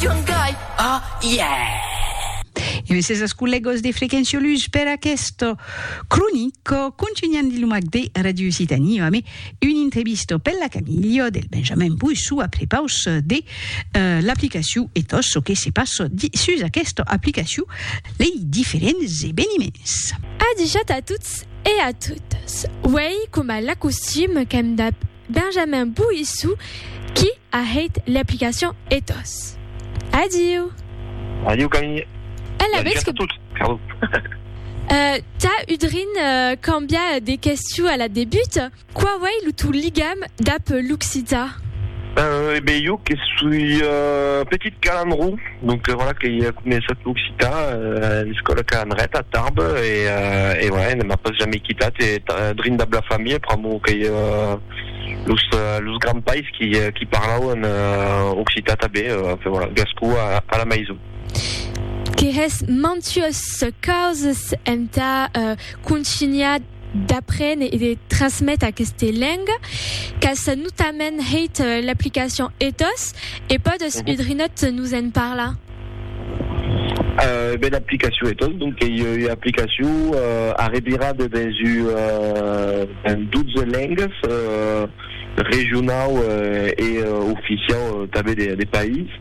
Young guy, oh yeah! E me ses ascollegos de Frequenciolus per aquesto cronico contunhan de lumac de Radio Occitanie ame un intrevisto pel la Camilio del Benjamin Poissou a prepaus de l'aplicaciu e tot ço que se passo di sus aquesta aplicaciu lei diferents eveniments. Adijat a tots e a totas. Uèi coma l'acostum qu'èm dab. Benjamin Bouissou qui a hèit l'aplicacion Ethos. Adiu! Adiu Camille! E la vez que. Tà udrin cambià de questiu a la debut, quau ei lo tò ligam dab l'occità? E ben jo que soi petit calandró. Donc voilà que i a començat l'occitan a l'escòla Can Ret a Tarbes e voilà ne m'a pas jamais quitat e drin dab la familha pr'amor qu'ei los grands pais qui parlauen occitan tanben enfin voilà gascon a la maison. Que hè's mantues causes entà contunhar d'aprene e de trasmete aqueste lenga qu'as notament hèit l'aplicacion ethos e pòdes un drinòt nos en parlar? Ben l'aplicacion ethos donc qu'ei ua aplicacion arrevirada dens un 12 lengas regionau e oficiau tanben de país.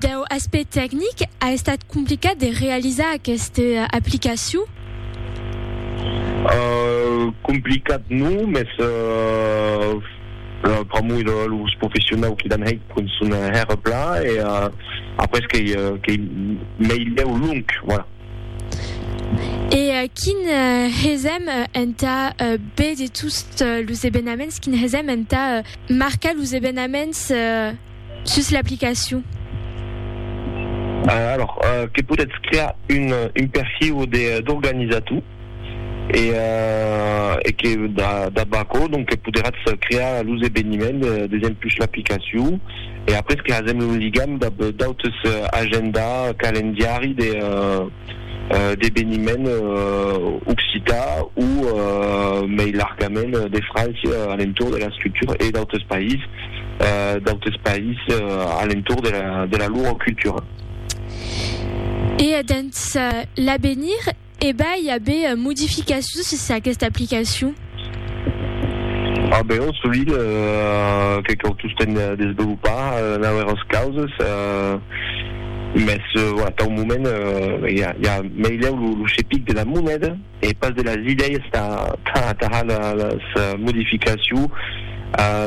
Deu aspect tecnic, a estat complicat de realizar aqueste aplicacion? Complicat non, mès pr'amor de los professionau qui l'an hèit pon son hèr pla e après qu'ei meilhèu long, voilà. E quin hesèm entà be de tost los ebenaments, quin hesèm entà marcar los ebenaments? Sus l'aplicacion. Alors, que podètz crear un un perfiu de d'organizator e e que dab aquò donc que poderatz crear los eveniments d'exempus l'aplicacion e après que hasèm lo ligam dab d'autes agenda, calendiari de d'eveniment occitan o mei largament de França a l'entorn de l'escritura e d'autres païses, d'autres païses a l'entorn de la lor cultura. E dens l'avenir, e vai aver modificacions sus aquesta aplicacion? A be, ò solide, que cau tostemp desvelopar nauèras causes, mès voilà, tau moment i a meilèu lo chepic de la moneda e pas de las idèias tà atajar las modificaciu,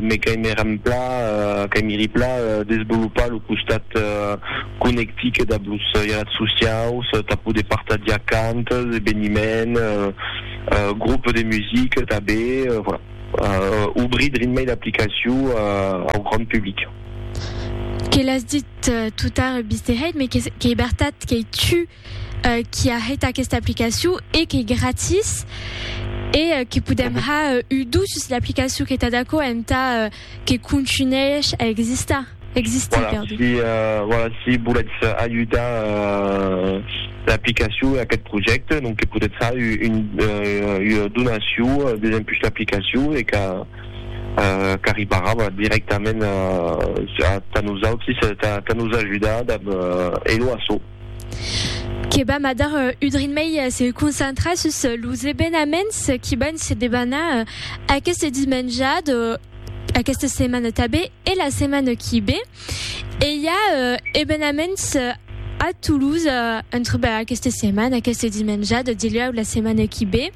me caimè rempla, caimiri pla desvelopar lo costat conectic dab los ialats sociaus tà poder partagiar cantes, eveniments, Groupe de musique tanben, voilà. Obrir Dreammail aplicacion au grand public. Que l'as dit tout tard Mister Hate, mais qu'ei bertat qu'ei tu qui a hèit aquesta aplicacion e qu'ei gratis e que podem har udusses l'aplicacion que t'as d'aquò entà Que contunhèish a existar, existir, perdon. Voilà, si, voilà, si volètz ajudar l'aplicacion e aqueth projècte, donc que podètz far ua donacion desempuish l'aplicacion e qu'a, qu'arribarà directament tà nosautris, tà nos ajudar dab Hello Asso. que vam a dar un drin mei se concentrar sus los evenaments qui van se debanar aqueste dimenjat, aquesta setmana tanben e la setmana qui ve. E i a evenaments a Toulouse entre aquesta setmana, aqueste dimenjat, dilhèu la setmana qui ve.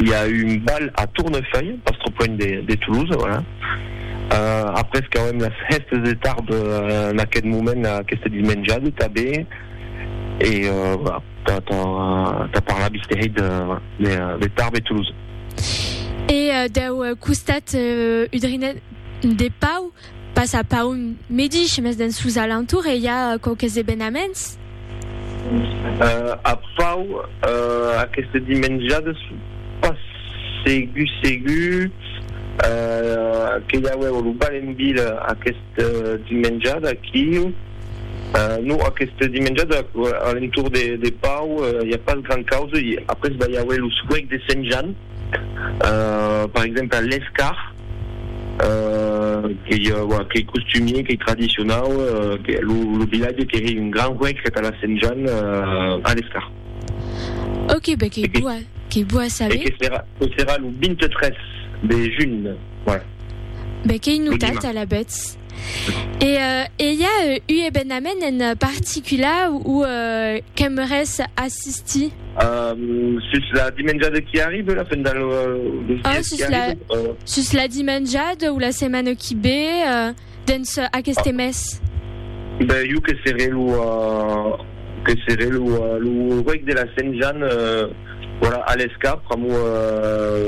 i a un bal a Tournefeuille, pas trop loin de Toulouse, voilà. Après qu'auem las hèstes de tard en aqueth moment, aqueste dimenjade tanben, e voilà, tà parlar vistèhei de Tarbes e Toulouse. E dau costat udrinenc de Pau, Pas a Paun medish, mes dens sos alentours e i a quauques evenaments. A Pau, aqueste dimenjades pas segur segur que i auèu lo bal en vila aqueste dimenjade aquiu. Non, aqueste dimenjade a l'entorn de Pau i a pas grand causa. Après va i auer lo suec de Sent Jan, per exemple a l'Escar. qu'ei qu'ei costumier, qu'ei tradicionau, que lo lo vilatge qu'ei un gran huec entà la Sent Jan a l'escart. Ok, ben qu'ei bo a qu'ei bo a saber. E que serà que serà lo 23 de junh, voilà. Ben qu'ei notat alavetz. E e i a u ebenament en particula ou qu'aimeres assistir? Um, sus la dimenjada qui arribe, la fin del, los dies qui arriben? Oh, sus la dimenjada ou la setmana qui be, dens aqueste mes? Ben, jo que seré lo, que seré lo, lo reg de la Sent Jan, Voilà, a l'escap, pr'amor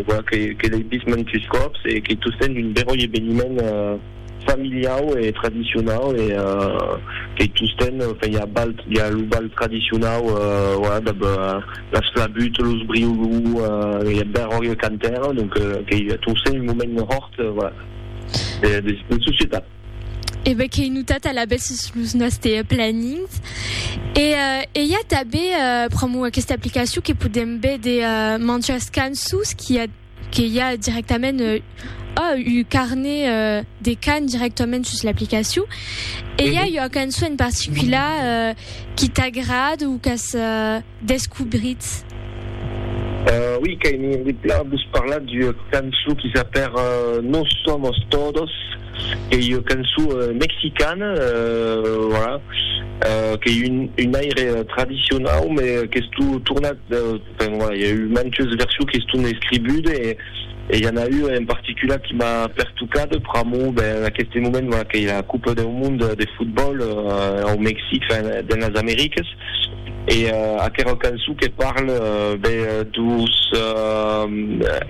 voilà que que l'ei vist mantus còps e qu'ei tostemps un beròi eveniment familiau e tradicionau e qu'ei tostemps enfin i a bal i a lo bal tradicionau voilà dab las flabuts, los briolous, i a beròi e cantèr donc qu'ei tostemps un moment hòrt voilà de societat. E bè qu'ei notat alavetz sus los nòste planins. E i a tanben, pr'amor d'aquesta aplicacion, que podèm véder manjas cançons qu'i a, que i a directament, oh, un carnet de cant directament sus l'aplicacion. E i a ua cançon en particular qu'i t'agrada o qu'as... descobritz? Ui, qu'ai envie plan vos parlar d'ua cançon qui s'apèr No somos todos, qu'ei ua cançon mexicana, voilà, qu'ei un aire tradicionau, me qu'estó tornat, enfin voilà, i a eu mantes versions qui estón escribudes e i a n'a ua en particular qui m'a pertocat pr'amor, ben, en aqueste moment, voilà, qu'ei la Copa deu Monde de Fotbòl au Mexic, enfin, dens las Americas. E aquerò cançon que parle be dos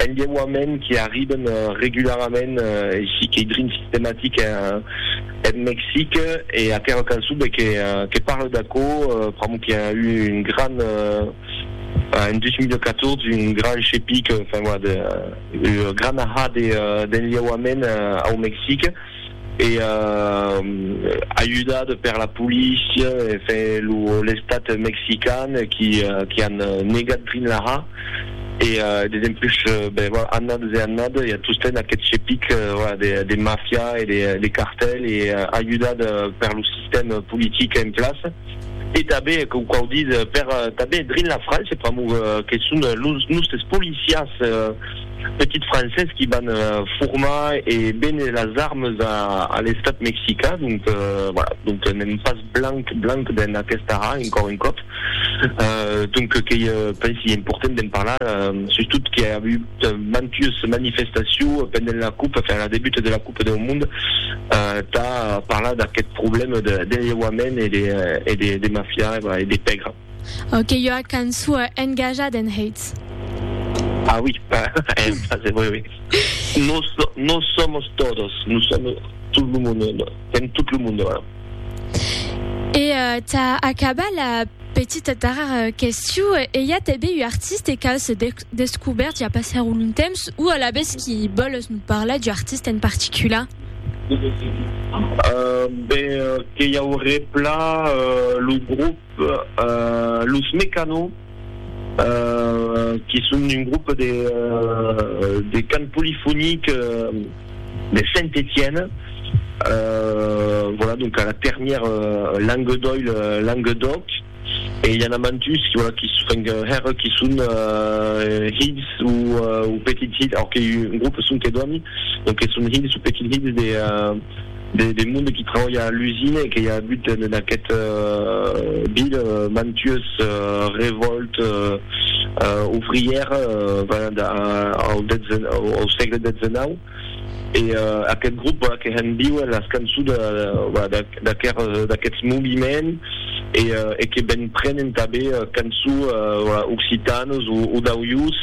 enlheuaments qui arriben regularament aicí qu'ei drin sistematic en Mexic e aquerò cançon be que parle d'aquò pr'amor que i a eu un gran en 2014 un gran chepic enfin voilà de gran ahà d'enlheuaments au Mexic. e ajudada per la polícia e l'estat mexican qui an negat Drinlaha e dempuish annadas e annadas i a tostemps aquest chepic de mafia e de cartel e ajudat per lo sistèm politic en plaça e tanben coma quau ditz tanben drin la França pr'amor que son los nòstes policiás petits Francés qui van formar e véner las armes a l'Estat Mexicain, donc voilà, donc n'èm pas blanc blanc dens aquesta haa encòr un còp, donc qu'ei pensi important d'en parlar, sustot qu'i a agut mantues manifestacion pendent la coupe, enfin la debuta de la coupe deu mond, tà parlar d'aqueth problème de lheuament e de mafia e de pègra. Au que ua canço engajat en Hates. Ah oui, c'est vrai, oui. Nos, nos somos todos, nous sommes tout le monde, en tout le monde. E ta acaba la petita darrèr question, e i a tanben un artiste qu'as descobèrt ja passèr un long temps, o alavetz qui vòles nos parlar d'un artiste en particular? Ben, que i auré plan lo groupe. Los Mecano, que son un grop de cant polifonic de Saint-Etienne, voilà, donc a la ternièr Languedoil, Languedoc, e i a na mantus, voilà, qui enfin hèr qui son hilhs ou petits hilhs, alors que un grop son que dòni, donc que son hilhs ou petits hilhs de de monde qui trabalha a l'usina e que i a agut en aquest ville mantues revòltes ouvrières venent au sègle xix e aquest grop que hèn viuer las cançons d'aquests moviments e que ben prenen tanben cançó occitanos o d'auiós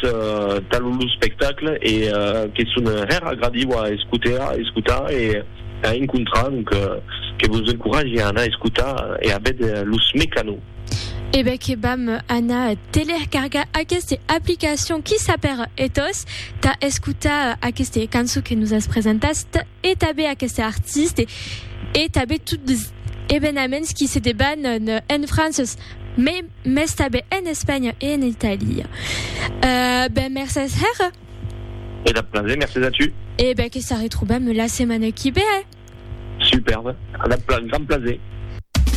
tal lo spectacle e que son hèr agradiu a escotar e a encontrar donc que vos encoratge a anar escotar e a vèder los Mecano. E ben que vam anar telercargar aqueste aplicacion qui sap per etós tà escotar aqueste cançó que nos as presentat. e tanben aqueste artiste e tanben tot los evenaments qui se deban en Frances mai mes tanben en Espanha e en Italia euh ben mercés hèr. E dab plaser, mercés a tu. E ben que s'arretrobam la setmana qui vé. Superbe, a dab gran plaser.